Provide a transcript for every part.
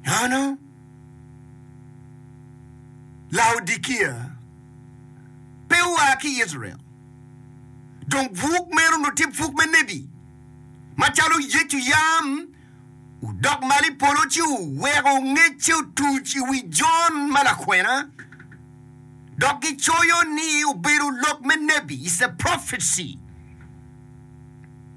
Nono Laodikia pe oa ki i Icrael, dong buk meno onongo tye pwok me nebi. Macalo Yecu yam odok malo i polo ci oweko ngecce otuc i wi Jon ma lakwena, dok gicoyo ni obedo lok me nebi, is a prophecy.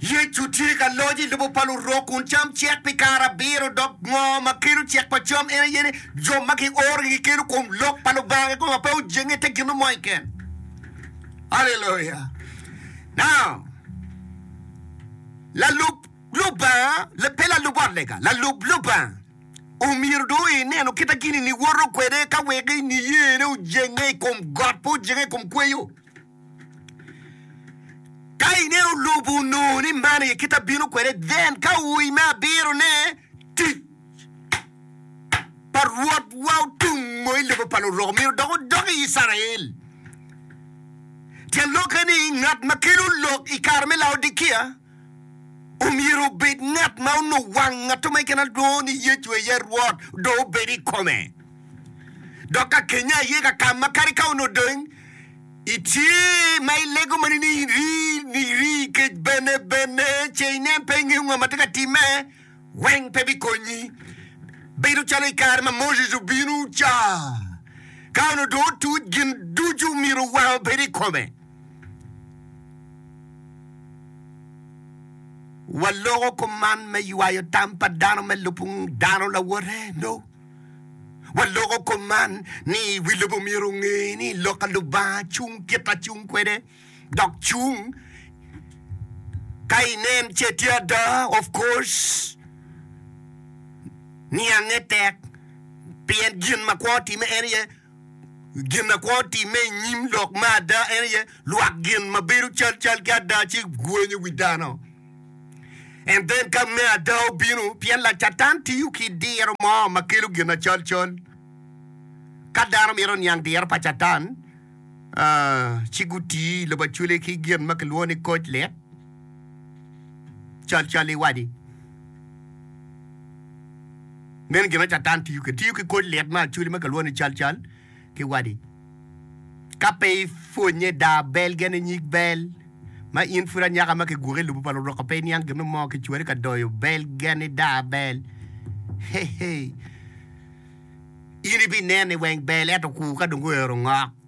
Yecu tye ka loc i lobo pa Lurok kun cam cek pi kare abiro, dok ngo ma kelo cek pa cam? En aye ni, jo ma giorogi gikelo kom lok pa Lubanga kikopo ma pe ojenge te gin mo mo keken. Haleluya! Now, lalub Lubanga, pe lalub ot lega, lalub Lubanga. Omyero dong inenu kita gini ni woto kwede ka wek niyene ojenge i kom got pe ojenge i kom kweyo. Ka ineno lobo onongo ni man aye kita bino kwede, then ka ui me abiro ne tic pa Rwot wa otungo i lobo pa lurok myero dok odok i Icrael. Tyen lokke ni ngat ma kelo lok i kare me Laodikia. omyero obed ngat ma onongo wang ngatto ma keken alwongo ni Yecu aye Rwot dong obed i kome. Dok ka kenye aye ka ka ma kadi ka onongo dong itye ma ilego ma nini iri ni iri kec bene bene ce inen pe ingeyo ngo ma tye ka timme weng pe bikonyi. Bedo calo i kare ma Moses obino ca ka onongo dong otuc gin ducu myero wang obed i kome. Waloko kom man me ywayo tam pa dano me lubo dano lawote? No. Waloko kom man ni wi lobo myero onge ni lok pa Lubanga cung kit ma cung kwede, dok cung ka inen ce tye ada, of course, niange tek pien gin ma kwo timme en aye. gin akwo timme i nyim lok me ada en aye lwak gin ma bedo calcal ki ada ci gwenyo wi dano. And then ka me ada obino, pien Lacatan tiyo ki diro mo ma kelo gin acolcol. Ka dano mito niang diro pa Catan, ah, ci guti i lobo acwele ki gin ma kilwongo ni koc lit. calcal i wadi. Meno gin ma Catan tiyo kwede. Tiyo ki kor lit ma actually ma kilwongo ni calcal ki wadi. Ka pe ipwonye daa bel gene nyig bel ma in pud anyaka ma kigwoko i lobo pa luruka pe iniang gin mo kicwari ka doyo bel geni daa bel. Hey hey. In ibinene weng bel ento kur ka dong oero ngok.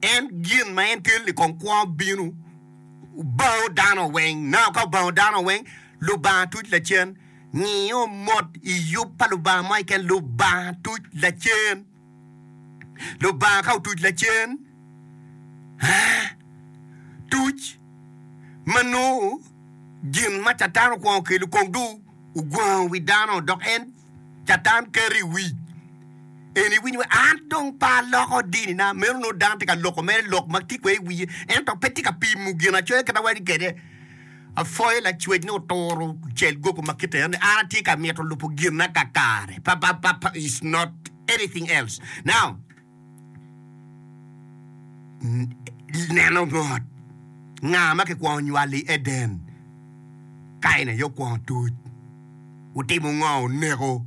En gin ma en tel-li kong kwongo bino bao dano weng. Naka ka obao dano weng, Lubanga tuc lacen. Ngiyo mot i yub pa Lubanga mo keken, Lubanga tuc lacen. Lubanga ka otuc lacen, aa, tuc ma nongo gin ma Catan okwongo kelo kong dong ogwango wi dano, dok en Catan keto i wic en iwiny wa an dong pe aloko dini na meno no dano tye ka loko mere lok ma tye kwede i wiye ento pe tye ka pimo gin acoya kit awari kwede afoyo lacwec ni oturo cel gogo ma kite ni an atye ka mito lupo gin na kakare pa pa pa pa is not anything else now neno ngot nga ma kikwongo nywalo i Eden. Kain aye okwongo tuc. Otimo ngo? Oneko.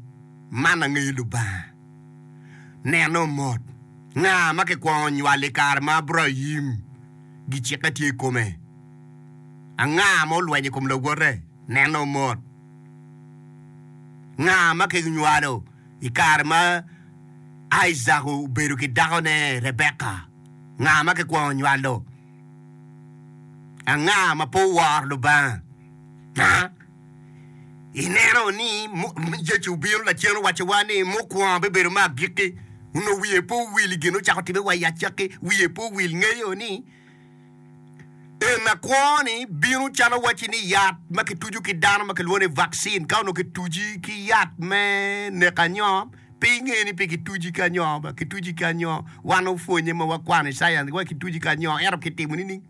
Man angeyo Lubanga. Neno mot nga ma kikwongo nywalo i kare ma Abraim gicikke tye i kome. Anga ma olwenyo i kom lawote? Neno mot nga ma kinywalo. I kare ma Aica obedo ki dakone Rebeka, nga ma kikwongo nywalo? Anga ma pe oworo Lubanga? Ha? Ineno ni Yecu obino lacen owacciwa ni mukwongo bibedo me agikki, onongo wiye pe owil i gin ocako timme wa i acakki, wiye pe owil ngeyo ni En akwo-ni bino calo wacci ni yat ma kitucu ki dano ma kilwongo ni vaccine ka onongo kituci ki yat me neko anyoo pe inge ni pe kituci ki anyoo ba kituci ki anyoo wan opwonye ma wakwano i science wa kituci ki anyoo ento kitimo nining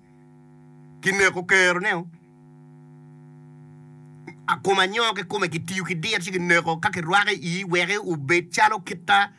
kineko kero ne o kom anyoo kikome kitiyo ki dir ci kineko ka kirwako i ii weke obed calo kita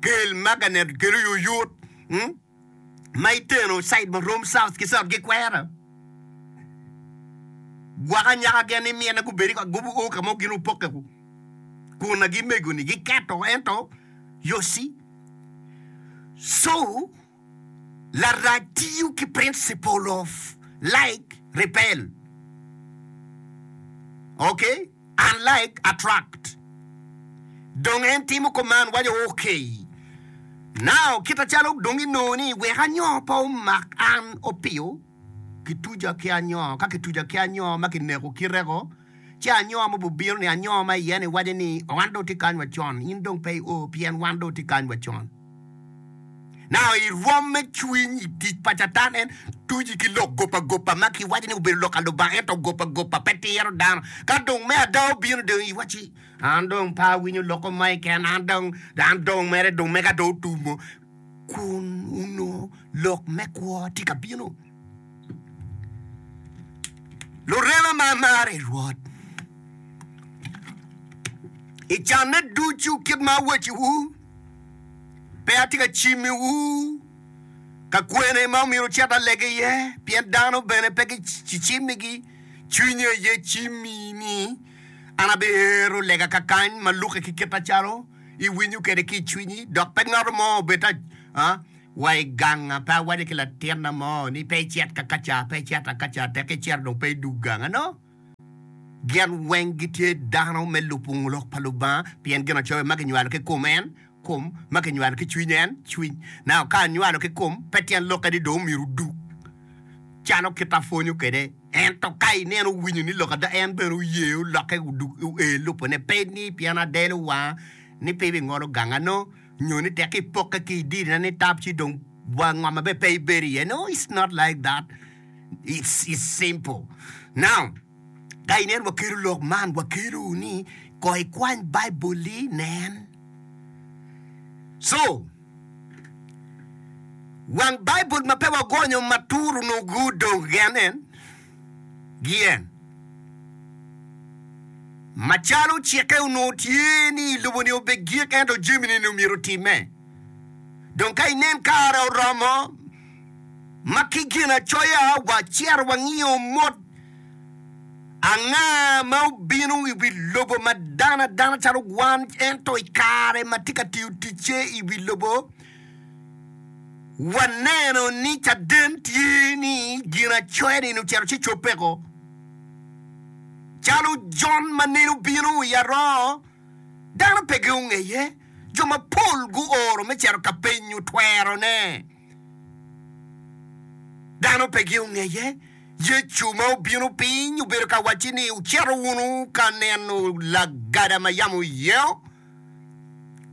Kel maganet kelo yoyot ma iteno cid ma rom south ki south gikwera gwoko anyaka gen ni myene gubedi ka gubu o kamo gin opoke ku kun agi mego ni giketo ento yosi so Larac tiyo ki principle of like repel, ok, and like attract. Dong en timo kuman, waco, ok, now kit acalo dong inongo ni wek anyoo pe omak an opiyo, kituca ki anyoo, ka kituca ki anyoo ma kineko kite-ko, Ci anyowa mogo obino, ni anyowa ma iye ni wace ni, Wan dong tye kany wa con, in dong pe io, pien wan dong tye kany wa con. Naka i rwom me cwiny i tic pa Catan en tuji ki lok goba goba ma ki waco ni obedo lok a Lubanga ento goba goba pe tiro dano. Ka dong me ada obino dong i waci, An dong pe awinyo lok omae ken, an dong, an dong mere dong mega dong otumo. Kun onongo lok me kwo tye ka bino. Lurema ma amaro i Rwot, i canne ducu kit ma awacciwu, pe atye ka cimiwu ka kwene ma myero wucit alege iye, pien dano bene pe gicimmigi, cwinye aye cimmi ni an abiero lega kakany ma lukke ki kite calo iwinyo kwede ki i cwinyi, dok pe ngat mo obed ta. wa i ganga, pe awaco ki latinna mo ni, 'Pe icit ka ka ca, pe icit ka ka ca, tek icito dong pe idug ganga. No, gin weng gitye dano me lubo lok pa Lubanga, pien ginacoya ma kinywalo ki kom en, kom, ma kinywalo ki cwiny en, cwiny. Nao ka anywalo ki kom, pe tyen lokke ni dong omyero odug, calo kit apwonyo kwede. Ento ka i neno owinyo ni lok ada, en bene oye olokke odug, oe lubone, pe ni pien adelo wanga ni pe ibingolo ganga. No, nyo ni tek ipokke ki i dirina ni tap ci dong wa ngoma bene pe ibedo iye no it's not like that it's it's simple now ka inen wakelo lok man wakelo ni ko ikwany bible li nen so wang bible ma pe wagonyo ma tur onongo gudong gen en gien. Macalo cikke onongo tye ni i loboni obed gik ento jamini ni omyero otimme. Dong ka inen kare oromo ma ki Ginacoya wacito wangiyo mot anga ma obino i wi lobo ma dano adana calo wan ento i kare ma tye ka tiyo ticce i wi lobo, Waneno ni caden tye ni Ginacoya-ni ocito ci cobbeko. Calo Jon ma nene obino i aroo, dano pe gungeye. Jo mapol guoro me cito ka penyo twerone. Dano pe gungeye. Yecu ma obino piny obedo ka wacci ni, Wucito wunu ka neno lagada ma yam oyeo?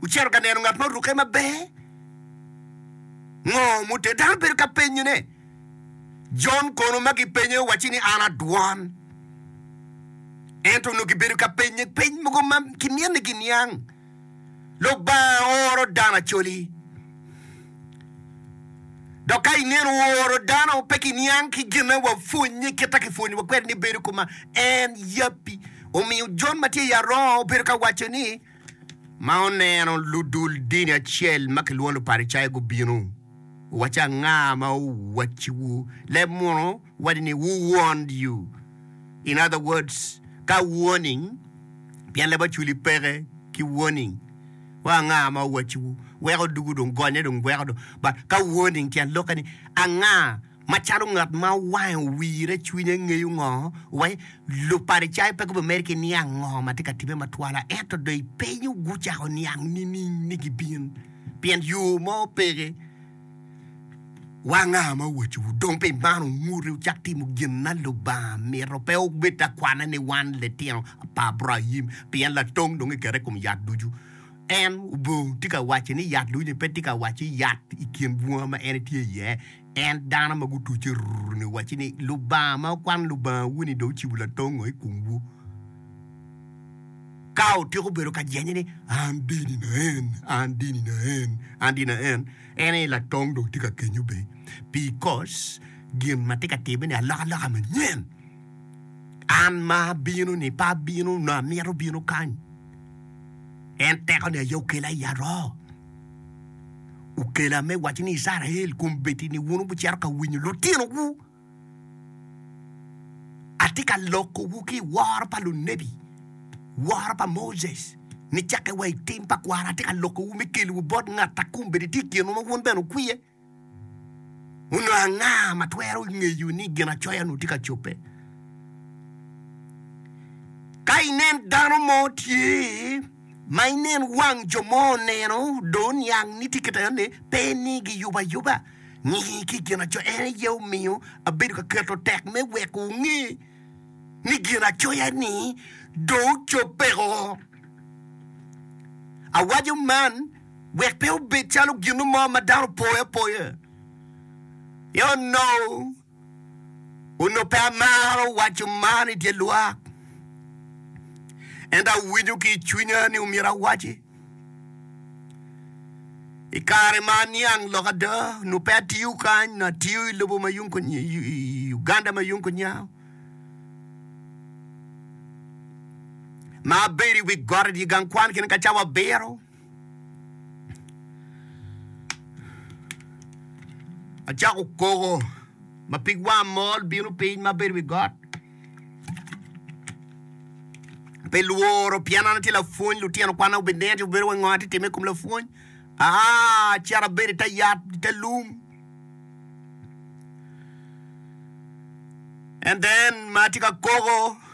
Wucito ka neno ngat ma orukke maber? Ngo mute dano bedo ka penyone? Jon kono ma gipenye owacci ni an adwon. Ento onongo gibedo ka penye peny mogo ma kinyenni giniang. Lubanga oro dano acoli. Dok ka ineno oro dano, pe kiniang ki gine wa pwonye kit a kipwonyowa kwede ni bedo kuma en yabbi. Omiyo Jon ma tye i arongo obedo ka waco ni, Ma oneno ludul dini acel ma kilwongo Luparicayo gubino, owace, Anga ma owacciwu leb muno? wadi ni who warned you in other words ka warning pien leb oculi peke ki warning wa anga ma owacci wu weko odugu dong gonye dong gweko dong but ka warning tyen loke ni anga ma calo ngat ma wange owire cwinye ngeyo ngo wa luparicayo pe gubi meri ki niang ngo ma tye ka time ma twala ento dong ipenyo gu cako niang nining ni gi bin pien yo mo peke Wanga ma owacowu dong pi man wunguti wucak timo gin ma Lubanga mito, pe wubed ka kwane ni wan litino pa Abraim, pien latong dong kiketo i kom yat ducu. En obongo tye ka wacci ni yat ducu-ni pe tye ka wacci yat i kin bunga ma en tye iye, ento dano ma gutucce ruru-ni owacci ni, Lubanga ma wukwano Lubangawu-ni dong ocibo latong-ngo i komwu? Ka otyeko bedo ka jenye ni, An dini na en, an dini na en, an dini na en, en aye latong dong tye ka kenyo be. Bikos gin ma tye ka timme-ni alokaloka manyen. An ma abino-ni pe abino onongo amito bino kany. En tekone aye okela i aroo. Okela me wacci ni Icrael, kombeddi-ni wun wubicito ka winyo litinowu. Atye ka lokowu ki i woro pa lunebi, woro pa Moses, nicakke wa i tim pa kwara. Atye ka lokowu me kelowu bot ngat a kun bene tye i kinwa ma wun bene wukwiye. Onongo anga ma twero ngeyo ni Ginacoya-nu tye ka cobbe? Ka inen dano mo tye ma inen wang jo mo oneno, dong oniang ni tye kit ayone, pe ni giyubo ayuba. Ngiyi ki i Ginacoya, en aye omiyo abedo ka keto tek me weko wunge ni Ginacoya-ni dong ocobbeko. Awaco man wek pe obed calo gino mo ma dano opoyo apoya. Yoh. Onongo pe amaro waco man i dye lwak, ento awinyo ki i cwinya ni omyero awaci. I kare ma aniang lok ada, onongo pe atiyo kany, onongo atiyo i lobo ma yung kunya, i- i- i Uganda ma yung kunya. Ma abedo i wi got i dye gang kwan kene ka cawa abiro. Acako koko ma pig wang mol bino piny ma bedo i wi got. Pe lworo pien an atye lapwony lutino kwana gubineno ci gubedo wai ngo atye ka timme i kom lapwony aa acito abedo i te yat i te lung and then ma atye ka koko